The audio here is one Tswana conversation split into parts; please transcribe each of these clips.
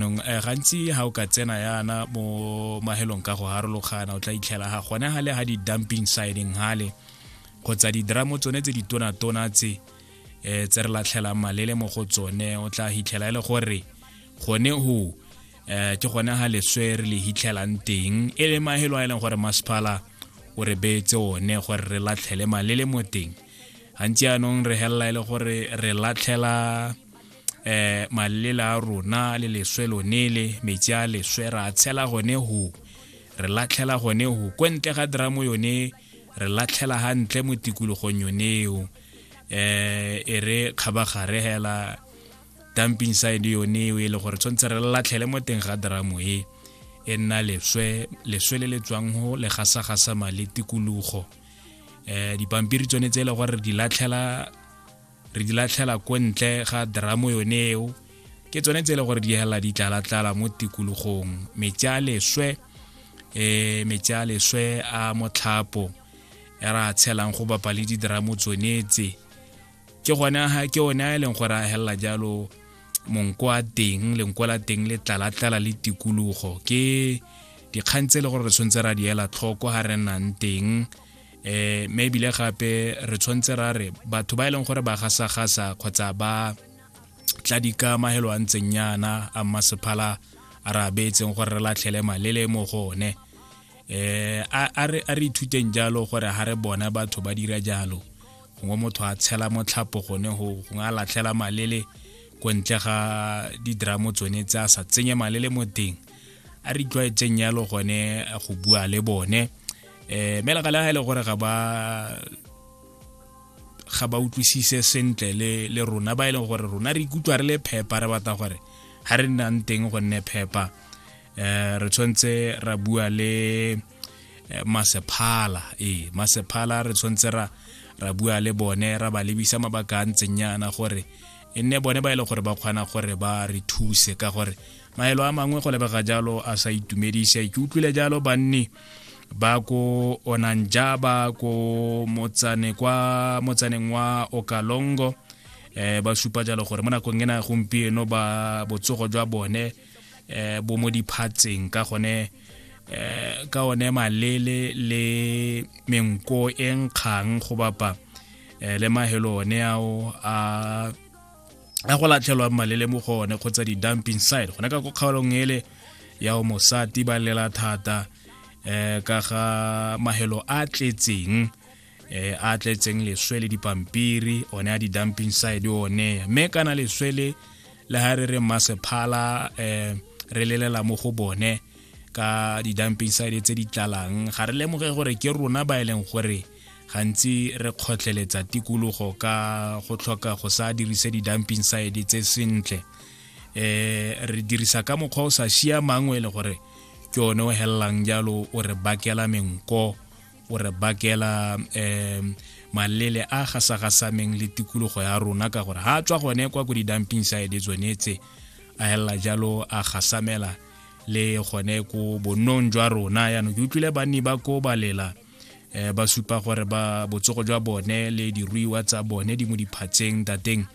nong eh, gantsi ga o ka tsena yana mo mahelong ka go harologana o tla itlhela ga gone ga le ga di-dumping siding gale kgotsa didramo tsone tse ditonatona tse um tse re latlhelang malele mo go tsone o tla hitlhela e le gore gone go um eh, ke gone ga leswe re le hitlhelang teng e le mahelo a e leng gore masephala o re beetse one gore re latlhele malele mo teng gantsi anong re helela e le gore re latlhela eh malela a rona le leswe lone le metsi a leswe ra tshela gone ho re latlhela gone ho ko ntle ga dramo yone re latlhela gantle mo tikologong yoneo eh e re kgabagare hela dumping side yone e le gore tshwanetse re latlhele mo teng ga dramo e e nna leswe leswe le le tswang go le gasagasama le tikologo um dipampiri tsone tse e le gore di latlhela re di latlhela ko ntle ga dramo yone eo ke tsone tse e le gore di helela di tlala-tlala mo tikologong metsi a leswe um metsi a leswe a motlhapo e ra tshelang go bapa le didramo tsonetse ke gone ke one a e leng gore a helela jalo monko a teng lenko la teng le tlala-tlala le tikologo ke dikgang tse e le gore re tshwanetse ra di ela tlhoko ga re nnang teng eh me bile gape re tshwantse ra re batho ba e leng gore ba gasa gasa kgotsa ba tla di ka mahelo a ntseng yana a masephala a re abetseng gore re latlhele malele mo go one eh a re ithuteng jalo gore ha re bona batho ba dira jalo gongwe motho a tshela motlhapo gone go gongwe a latlhela malele ko ntle ga didramo tsone tse a sa tsenye malele mo teng a re itlwaetseng yalo gone go bua le bone eh me laka la e le gore ga ba ga ba utlwisise sentle le le rona ba e leng gore rona re ikutlwa re le phepa re batla gore ha re nnang teng go nne phepa eh re tshwantse ra bua le eh, masephala ee masephala re tshwantse ra ra bua le bone ra ba lebisa mabaka a ntseng yana gore e nne bone ba e leng gore ba kgona gore ba re thuse ka gore maelo a mangwe go lebega jalo a sa itumedise ke utlwile jalo banni ba ko onanjaba ko motsane kwa motsaneng wa okalongo eh, ba supa jalo gore mo nakong ena gompieno ba botsogo jwa bone eh, bo mo diphatseng ka gone eh, ka one malele le menko e nkgang go bapa eh, le mahelo one ao a a go latlhelwang malele mo go one kgotsa di-dumping side gona ka ko kgaolong ele ya o mosati ba lela thata um ka ga mahelo a tletseng um a tletseng leswe le dipampiri one a di-dumping side one mme kana leswe le le ga re re masephala um re lelela mo go bone ka di-dumping side tse di tlalang ga re lemoge gore ke rona ba e leng gore gantsi re kgotlheletsa tikologo ka go tlhoka go sa dirise di-dumping side tse sentle eh re dirisa ka mokgwa o sa siamang o e le gore ke one o helelang jalo o re bakela menko o re bakela um malele a gasagasameng le tikologo ya rona ka gore ga tswa gone kwa ko di-dumping side tsone tse a helela jalo a gasamela le gone ko bonnong jwa rona yaanong ke utlwile banni ba ko balela eh ba supa gore ba botsogo jwa bone le diruiwa tsa bone di mo diphatseng tateng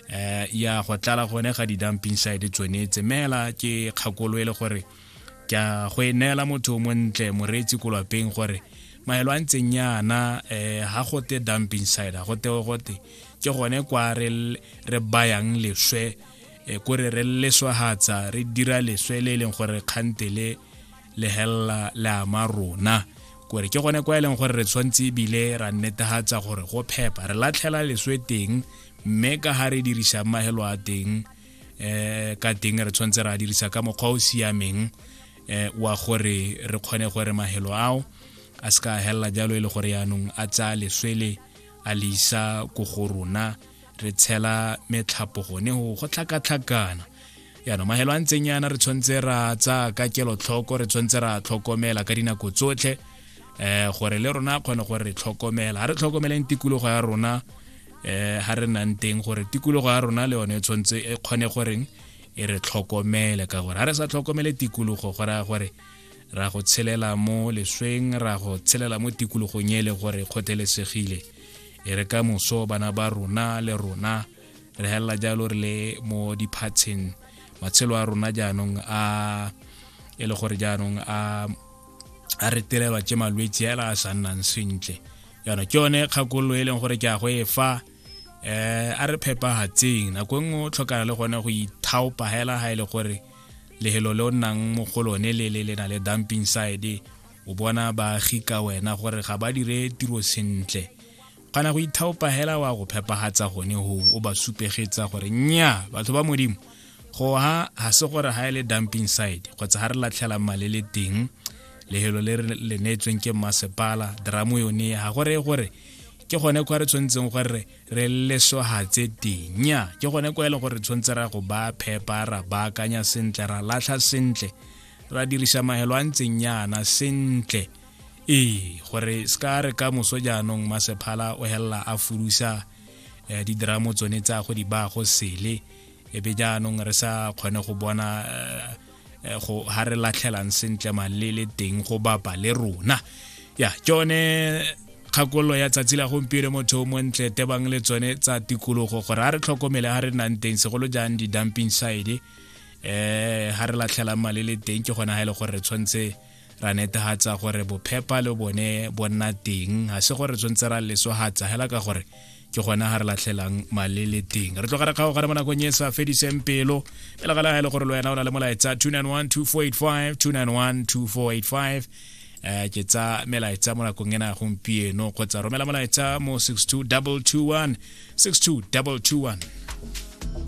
eh ya go tlala gone ga di-dumping side tsone tsemela ke kgakolo e le gore ke a go e neela motho o montle moreetsi ko lwapeng gore maelo a ntseng yana um eh, ga gote dumping side ga gote gote ke gone kwa re bayang leswe eh, kore re leswahatsa re dira leswe le e leng gore kgante le le helela le ama rona kore ke gone kwa e leng gore re tshwanetse ebile ra netegatsa gore go phepa re latlhela leswe teng mme ka ga re dirisa mahelo a teng um ka teng re tshwanetse re a dirisa ka mokgwa o siameng um wa gore re kgone gore mahelo ao a se ka a helela jalo e le gore yaanong a tsaya leswele a le isa ko go rona re tshela metlhapo gone go go tlhakatlhakana yaanong mahelo a ntseng yana re tshwanetse ra tsa ka kelotlhoko re tshwanetse ra tlhokomela ka dinako tsotlhe um gore le rona kgone gore re tlhokomela ga re tlhokomeleng tikologo ya rona um ga re nang teng gore tikologo ya rona le yone e tshwanetse e kgone goreng e re tlhokomele ka gore ga re sa tlhokomele tikologo go raya gore ra go tshelela mo lesweng ra go tshelela mo tikologong e le gore kgothelesegile e re ka moso bana ba rona le rona re helela jalo re le mo diphatsheng matshelo a rona jaanong a e le gore jaanong a a re tirelwa ke malwetse ela a sa nnang sentle yana ke yone kgakololo e leng gore ke a go e fa eh a re phepagatseng nako e nngwe o tlhokana le gone go ithaopa hela ha e le gore lehelo le o nnang mo go lone le le le na le dumping side o bona baagi ka wena gore ga ba dire tiro sentle kana go ithaopa hela wa go phepagatsa gone go o ba supegetsa gore nya batho ba modimo go ha ga se gore ga e le dumping side kgotsa ga re latlhelang male le teng lehelo le le neetsweng ke masepala dramo yone ga gore gore ke gone kwa re tshwanetseng gore re lesogatse teng nya ke gone kwa e le gore tshwanetse ra go ba phepa ra baakanya sentle ra latlha sentle ra dirisa mahelo a ntseng yana sentle ee gore se ka re ka moso jaanong masephala o helela a furusa eh, didramo tsone tsa go di ba go sele ebe jaanong re sa kgone go bona eh, eh, go ha re latlhelang sentle malele teng go bapa le rona ya tsone kgakololo ya tsatsi la gompieno motho o montle tebang le tsone tsa tikologo gore a re tlhokomele ga re nnang teng segolo jang di-dumping side eh ha re latlhela mali le teng ke gona ha ile e gore re tshwantse ra netehatsa gore bophepa le bone bo nna teng ha se gore re tshwantse ra lesohatsa hela ka gore ke gona ha re latlhelang mali le teng re tlogara kgago gare mo nakong e sa fediseng pelo e legala ha ile e gore le wena o na le molaetsa 291 291 eh ke tsa melaetsa mo nakong ena ya gompieno kgotsa romela molaetsa mo 62 221 62 221